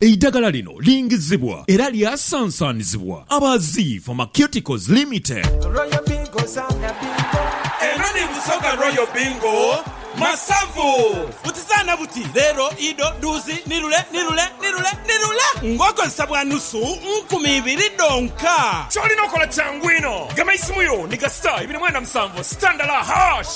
Eidagala lino lingizibwa era lyasansanizibwa aba Zii Pharmaceuticals Limited. Eno ni Busoga Royal Bingo Masavu. Butizaana buti, leero, ido, duuzi, nirule, nirule, nirule, nirule ng'okozesa bwa nusu nkumi ibiri dhonka. Ky'olina okola kyangu inho. Gema isimu yo ni ga star ibiri mwenda musanvu, star ndala, hash.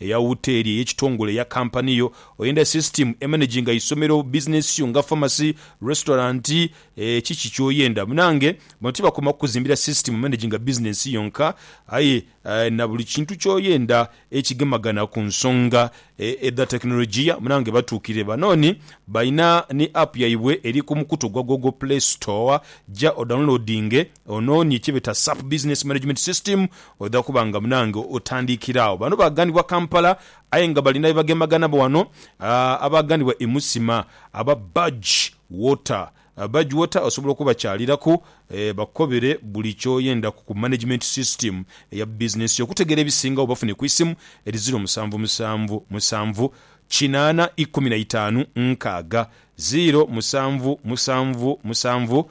Eya wuteli, eyekitongole, eya kampani yo, oyenda system emanaginga isomero, business yo nga pharmacy, restaurant, eeh kiki kyoyenda munange. Bano tibakoma kukuzimbira system emanaginga business yonka aye nabuli kintu kyoyenda ekigemagana kunsonga edha tekinologiya munange batuukirire banooni balina ni app yaibwe eri kumukutu gwa google play store ja odownloadinge Onoonye kye beta SAP Business Management System oidha kuba nga munange otandikira agho. Bano baaganibwa Kampala aye nga balina byebagemagana nabo wano abaaganibwa e Musima aba Budge Water. Budge Water osobola okubakyaliraku bakukobere buli kyoyendaku ku Management System eya business yo. Okutegeera ebisingagho bafune ku isimu eri ziro musanvu musanvu musanvu kinaana ikumi na itaanu nkaaga, ziro musanvu musanvu musanvu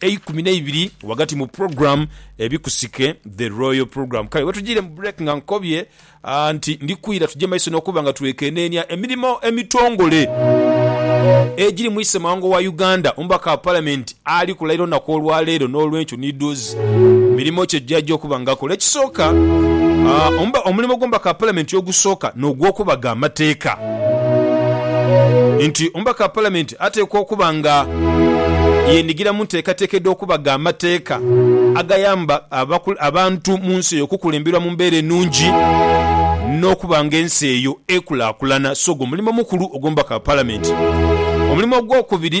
eikumi neibiri ghagati mu program Ebikusike The Royal Program. Kale wetujiire mu break nga nkobye nti ndikwira tuje maiso n'okuba nga twekeneenia emirimo emitongole egiri mu Isemawanga wa Uganda, Omubaka wa Palamenti ali kulayira olunaku olwaleero n'olwenkyo ni doozi mirimo ki egyajja okuba nga akola. Ekisooka, omulimo gw'Omubaka wa Palamenti ogusooka n'ogwokubaga amateeka nti Omubaka wa Palamenti, Ateekwa okuba nga yeenhigira mu nteekateeka edh'okuba gha mateeka agayamba abantu mu nsi eyo okukulemberwa mu mbeera enungi n'okuba nga ensi eyo ekulaakulana. Sogo mulimo mukulu ogw'omubaka wa Palamenti. Omulimo ogwokubiri.